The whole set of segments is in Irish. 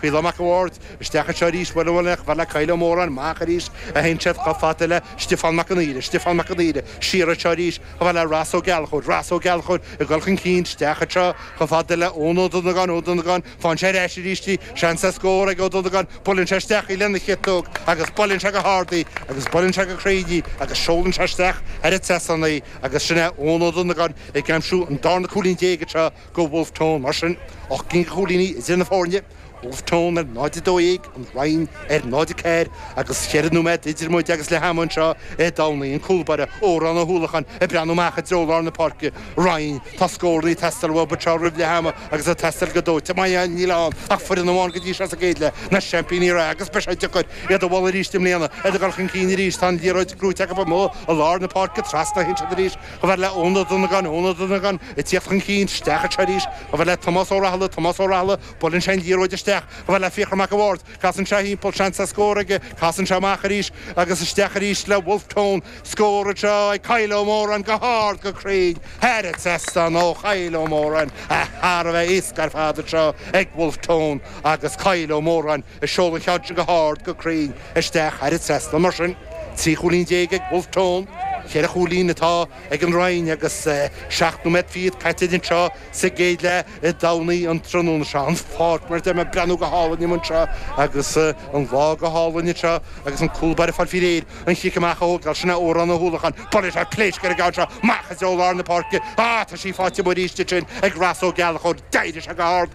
Caolán Mac a' Bhaird isteach anseo arís uair amháin eile chomh fada le Kyle Ó Móráin, amach arís anseo chomh fada le Stiofán Mac an Aoire, Stiofán Mac an Aoire, siar anseo arís chomh fada le Ros Ó Gallchóir, Ros Ó Gallchóir ag dul chun cinn isteach anseo chomh fada le Eoin Ó Dunagáin, Eoin Ó Dunagáin, faigheann sé ar ais arís í, seans ar scór ag Eoin Ó Dunagáin, buaileann sé isteach í lena chiotóg agus buaileann sé go hard í agus buaileann sé go cruinn í agus seolann sé isteach thar an trasnán í agus sin é Eoin Ó Dunagáin ag aimsiú an darna cúilín déag anseo do Wolfe Tone. Mar sin, ocht gcinn de chúilíní idir na foirne, Wolfe Tone ar 0-12, An Rinn ar 0-4, agus cheithre nóiméad idir muid agus leath ama anseo i dTamhnaigh. An cúlbáire, Odhrán Ó hUallacháin, ag breathnú amach i dtreo lár na páirce. An Rinn, tá scórannaí ag teastáil uathu anseo roimh leath ama agus ag teastáil go dóite. Mar níl ann ach foireann amháin go dtí seo sa gcéad leath, na seaimpíní reatha, agus beidh sé deacair iad a bhualadh arís i mbliana. Iad ag dul chun cinn arís, tá an liathróid gnóthaithe acu amuigh i lár na páirce, trasna ansin arís. Chomh fada le Eoin Ó Dunagáin, Eoin Ó Dunagáin ag tíocht chun cinn, isteach anseo arís chomh fada le Tomás Ó Rathaille, Tomás Ó Rathaille, buaileann sé an liathróid isteach chomh fada le Fiachra Mac a' Bhaird, casann sé thimpeall, seans ar scór aige, casann sé amach arís agus isteach arís le Wolfe Tone. Scór anseo ag Kyle Ó Móráin, go hard, go cruinn, thar an trasnán ó Kyle Ó Móráin, ach thar a bheith éasca ar fad anseo ag Wolfe Tone agus Kyle Ó Móráin. Ag seoladh an cheann sin go hard, go cruinn, isteach thar an trasnán mar sin. Trí chúilín déag ag Wolfe Tone, ceithre chúilín atá ag an Rinn agus seacht nóiméad fichead caite anseo sa gcéad leath i dTamhnaigh an tráthnóna seo. An pháirc mar a deir mé, ag breathnú go hálainn inniu anseo agus an lá go hálainn anseo agus an cúlbáire ag fáil faoi réir an cic amach a thógáil, sin é Odhrán Ó hUallacháin. Buaileann sé pléasc ar an gceann seo, amach i dtreo lár na páirce. Á, tá sí faighte amuigh arís ansin ag Ross Ó Gallchóir. D'éirigh sé go hard.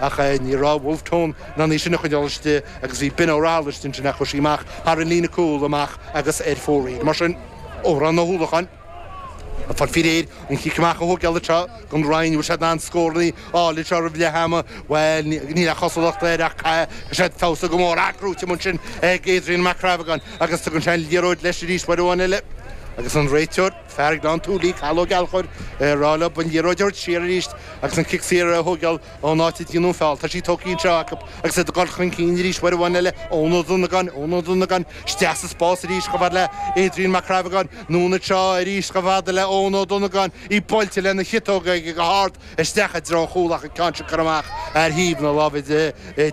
Ach ní raibh Wolfe Tone in ann í sin a choinneáil istigh agus bhí Ben Ó Rathaille ansin chuaigh sí amach thar an líne cúil amach agus ar fóraoil. Mar sin, Odhrán Ó hUallacháin ag fáil faoi réir an cic amach a thógáil anseo don Rinn. Bhfuil siad in ann scórannaí a fháil anseo roimh leath ama? Bhuel, níl a chosúlacht air ach caithfidh siad feabhsú go mór, í gnóthaithe amuigh ansin ag Adrian Mac Crabhagáin agus tugann sé an liathróid leis arís uair amháin eile agus an réiteoir Fear Ghleann tSúilí Cathal Ó Gallchóir ag rá leo an liathróid a thabhairt siar arís agus an cic saor a thóigeáil ón áit a ndearnadh an feall. Tá sí tógtha anseo acu agus iad ag dul chun cinn arís uair amháin eile Eoin Ó Dunagáin, Eoin Ó Dunagáin isteach sa spás arís chomh fad le Adrian Mac Crabhagáin, anonn anseo arís chomh fada le Eoin Ó Dunagáin, í buailte lena chiotóg aige go hard isteach i dtreo an chúl ach an ceann sin curtha amach ar thaobh na láimhe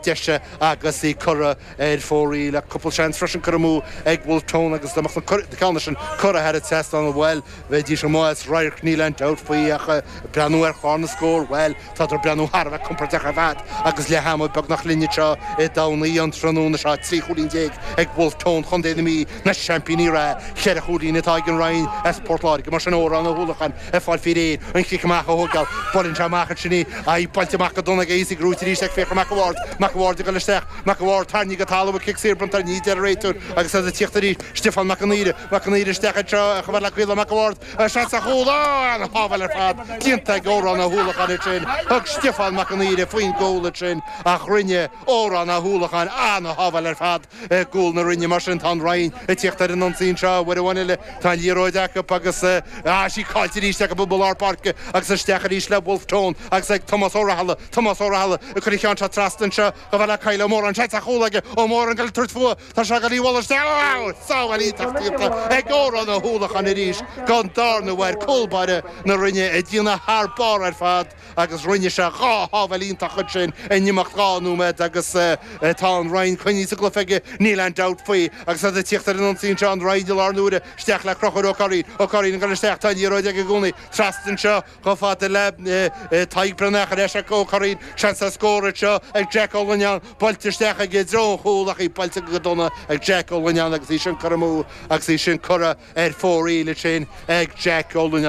deise agus í curtha ar fóraoil ach cúpla seans freisin curtha amú ag Wolfe Tone agus dá mbeadh na ceanna sin curtha thar an trasnán bhuel, bheidís amuigh as radharc níl aon dabht faoi ach ag breathnú ar chlár na scór, bhuel, tádar ag breathnú thar a bheith compordach ar fad agus leath ama beagnach linn anseo i dTamhnaigh an tráthnóna seo trí chúilín déag ag Wolfe Tone Chontae na Mí, na seaimpíní reatha, ceithre chúilín atá ag an Rinn as Port Láirge mar sin, Odhrán Ó hUallacháin. ag fáil faoi réir an cic amach a thógáil. Buaileann sé amach annsin í. Ach í buailte amach go dona aige is í ag rolladh arís é ag féachaint Mac a' Bháird. Mac a' Bháird ag dul isteach. Mac a' Bháird, tarraingthe go talamh, tá cic saor bronnta ar na Mí ag an réiteoir agus iad ag tíocht arís. Stiofán Mac an Aoire. Mac an Aoire isteach anseo chomh fada le Kyle Mac a' Bháird agus seans ar chúl. Ó! An-shábháil ar fad déanta ag Órán Ó hUallacháin annsin. Thug Stiofán Mac an Aoire faoi'n gcúl annsin ach rinne Órán Ó hUallacháin an-shábháil ar fad. I gcúl na Rinne mar sin tá an Rinn ag tíocht ar an ionsaí anseo, uair amháin eile. Tá an liathróid acu agus tá sí caillte arís acu i lár páirce agus isteach arís le Bhulf Tón agus ag Tomás Ó Raghallaigh. Tomás Ó Raghallaigh ag cur an cheann seo trasna anseo chomh fada le Kyle Ó Móráin. Seans ar chúl aige. Ó Móráin ag tabhairt faoi. Tá sé ag dul i bhfolach isteach. Wow! Sábháil iontach déanta ag Odhrán Ó hUallacháin arís don darna huair cúl báire na Rinne ag déanamh thar barr ar fad. agus rinne sé dhá shábháil iontach ansin in imeacht dhá nóiméad agus tá an Rinn coinnithe sa gcluiche aige, níl aon dabht faoi, agus iad ag tíocht ar an ionsaí anseo, an Rinn an iarraidh seo, isteach le Conchúr Ó Cuirrín, Ó Cuirrín ag dul isteach, tá an liathróid aige i gcónaí, trasna anseo chomh fada le Tadhg Breathnach, ar ais ag Ó Cuirrín, seans ar scór anseo ag Jack Ó Lonáin, buailte isteach aige i dtreo an chúil ach í buailte go dona ag Jack Ó Lonáin agus í sin curtha amú agus í sin curtha ar fóraoil ansin ag Jack Ó Lonáin.